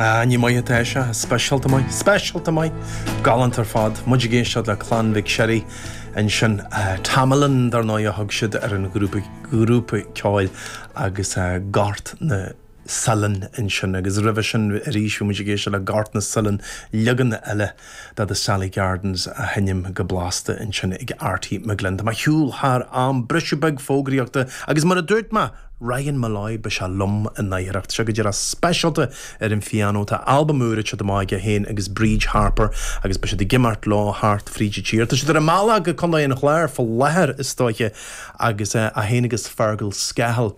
Ah, nach maith atá sé, speisialta maith, speisialta maith, galánta ar fad, muid ag éisteacht le Clann Mhic Sherry ansin, Tamalin dar ndóigh a thug siad ar an ghrúpa, grúpa ceoil, agus Gort na Saileán ansin, agus roimhe sin arís bhí muid ag éisteacht le Gort na Saileán, leagan eile. Ba iad Sally Gardens á sheinm go blasta ansin ag Arty McGlynn. Tá mé ag gabháil thar an briseadh beag fógraíochta agus mar a dúirt mé, Ryan Molloy, beidh sé liom ina dhiaidh. Seo go dtí rud speisialta ar an phianó. Tá albam úr ag teacht amach aige féin agus Bríd Harper agus beidh siad ag imeacht leo thart fríd an tír. Tá siad ar a mbealach go Contae an Chláir fá láthair is dóiche agus é féin agus Fergal Scahill,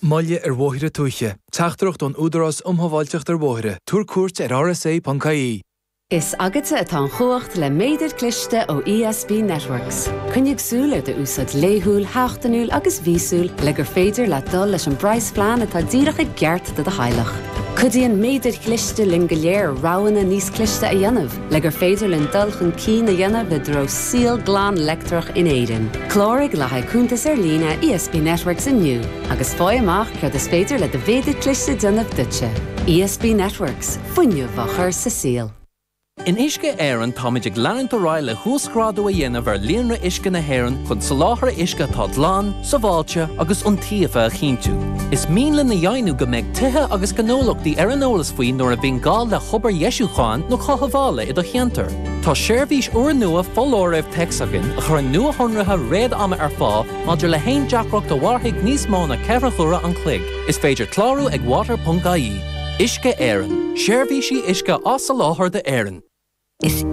Moille ar Bhóithre Tuaithe, Teachtaireacht ón Údarás um Shábháilteacht ar Bhóithre, Tabhair cuairt ar rsa.ie. Is agatsa atá an chumhacht le méadar cliste ó ESB Networks. Coinnigh súil ar d'úsáid laethúil, sheachtainiúil agus mhíosúil le gur féidir leat dul leis an bpraghasphlean atá díreach i gceart do do theaghlach. Cuidíonn méadair chliste linn go léir roghanna níos cliste a dhéanamh. Le gur féidir linn dul chun cinn a dhéanamh i dtreo saol glan leictreach in Éirinn, cláraigh le haghaidh cuntas ar líne ESB Networks inniu agus faigh amach céard is féidir le do mhéadar cliste a dhéanamh duitse. ESB Networks, fuinneamh á chur sa saol. In Uisce Éireann táimid ag leanúint ar aghaidh le huasghrádú a dhéanamh ar líonra uisce na hÉireann chun soláthar uisce atá glan, sábháilte agus iontaofa a chinntiú. Is mian linn a dheimhniú go mbeidh tithe agus gnólachtaí ar an eolas faoi nuair a bhíonn gá le hobair dheisiúcháin nó chothabhála i do cheantar. Tá seirbhís úrnua foláirimh téacs againn a chuireann nuashonruithe réad-ama ar fáil maidir le haon deacracht a mhairfidh níos mó ná ceithre huaire an chloig. Is féidir clárú ag water.ie. Uisce Éireann, seirbhísí uisce á soláthar d'Éirinn. Is.